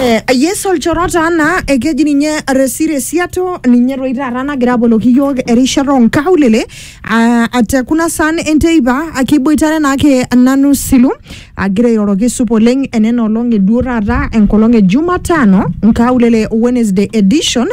Eh, yes olchoro taa naa ekeji ninye resire siato ninye toi taata nagira aboloki iyiook erishata onkaulele ah, ate kuna saan enteipa ah, kiboitare naake nanu silu agira airoroki supa oleng enena olong eduo taata enkolong e jumatano nkaulele wednesday edition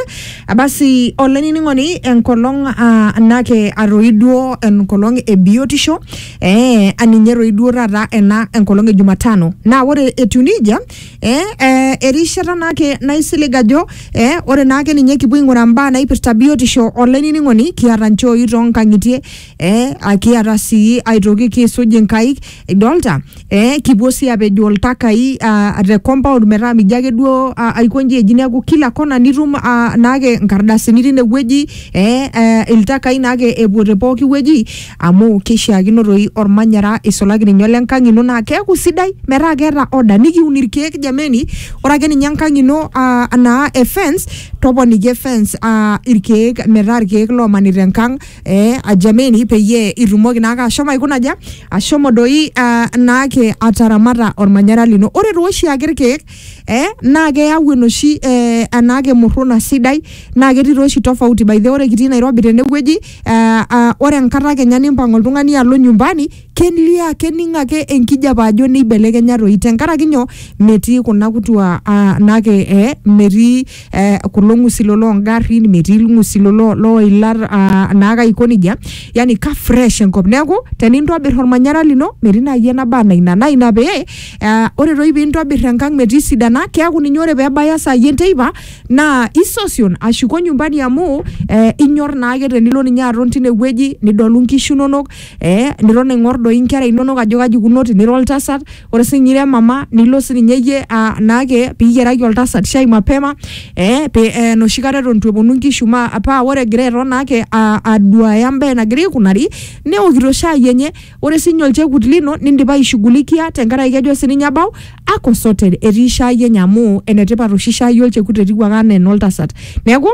Ah, basi olainining'oni enkolong ah, nake atoi duo enkolong e biotisho Ee, aninye toi duo taata ena enkolong e Jumatano. Naa ore etiu nejia, ee, ee, erishata naake naisilig ajo ee, ore naake ninye kipuo aing'uraa mbaa naipirta biotisho olainining'oni, kiata nchooi too nkang'itie, ee a kiata sii aitoki kiisuj nkaik idolta, ee kipuo sii apejoo iltakai aa te compound metaa mijo ake duo aa aiko nji eji neeku kila kona nitum aa naake nkardasini tine wueji, ee ee iltakai naake epuo te pooki wueji. Amu keishiakino doi olmanyara eisulaki ninye ole nkang ino naa keaku sidai metaa keeta order nikiun ilkeek jameni ore ake ninye enkang ino aa naa e fence toponiki e fence aa ilkeek metaa ilkeek loomanita enkang ee jameni peyie itumoki naake ashomo aikuna aja ashomo doi aa naake ataramata olmanyara lino. Ore taa oshi ake ilkeek ee naa keyau enoshi ee enaake murruna sidai naa ketii taa oshi tofauti by the way ore kitii Nairobi tenewueji eh, ah, ore enkata kenya nimpang oltung'ani alo nyumbani kelio ake kening ake enkijape ajo neibelekenya toi tenkaraki nyoo metii kuna kutua ah, nake eh, metii eh, kulo ng'usilo loongarrin metii ilng'usilo lo- looilat ah, naake aiko nejia yani ka fresh enkop neeku tenintobir ormanyara lino metii naaji enaba anaa ina naa ina pee eh, ore toi piintobir enkang metii sidana keeku ninye ore peebaya saai enteipa naa isosion ashuko nyumbani amu eh, inyor naake tenilo ninye aton tinewueji nidolu nkishu inonok eh, niton aing'or doi inkera inonok ajo kaji ikuno tinira oltasat ore sinye ira emama nilo sininye iyie ah, naake piyiaraki oltasat shai mapema eh, pe, eh, enoshi kata eton itu eponu nkishu ma paa ore egira airo naake ah, aduaya embaye nagira aikunari neokito shai enye Ore sii ninye olchekut lino nindipa aishughulikia tenkaraki kejo sii ninye abau ako sorted etii shaai enye amu enetipat oshi shaai olchekut etiu ake anaa enoltasat. Neeku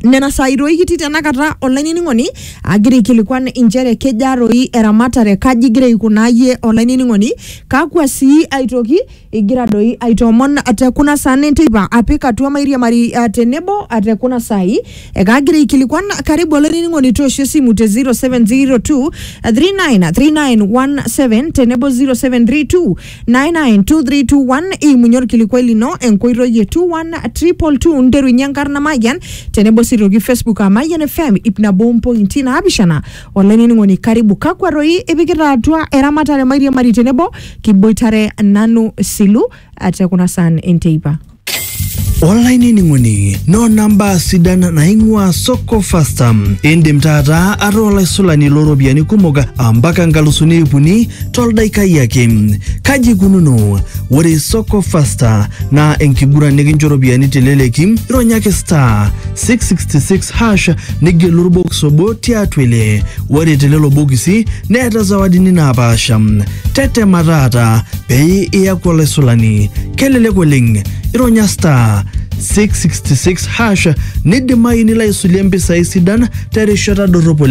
nena saai doi kitii tenakata olainining'oni agira aikilikuan inchere kejaa doi eramatare, kaji igira aikunaa iyie olainining'oni, kakwa sii aitoki igira doi aitoomon te kuna saan enteipa apik atua mairiamari uh, tenebo uh, te kuna saai ekaagira aikilikuan karibu olainining'oni toosho esimu te 0702 393917 tenebo 0732 992321 iimunye olkilikuai lino enkoitoi e 21222 nterunye enkarna mayian tenebo sii toki facebook aa mayian fm ip nabo mpointi naapishana olainining'oni karibu kakwa roi ipikita atua eramatare mairiamari tenebo kiboitare nanu silu eh, te kuna saan enteipa olainining'oni noona mbaa sidan naing'uaa soko fasta indim taata ataa olaisulani looropiyiani kumok ampaka nkalusuni ip uni toldaikai ake kaji ikununo ore soko fasta naa enkiguran nikincho ropiyiani teleleki ironyaki star 666 hash nigelu orbokis obo tiatua ile ore telelo bokisi neeta zawadini naapaasha tetema taata pee iyaku olaisulani kelelek oleng ironya star 666 hash nidimayu nilo aisulie mpisai sidan terishata dorrop oleng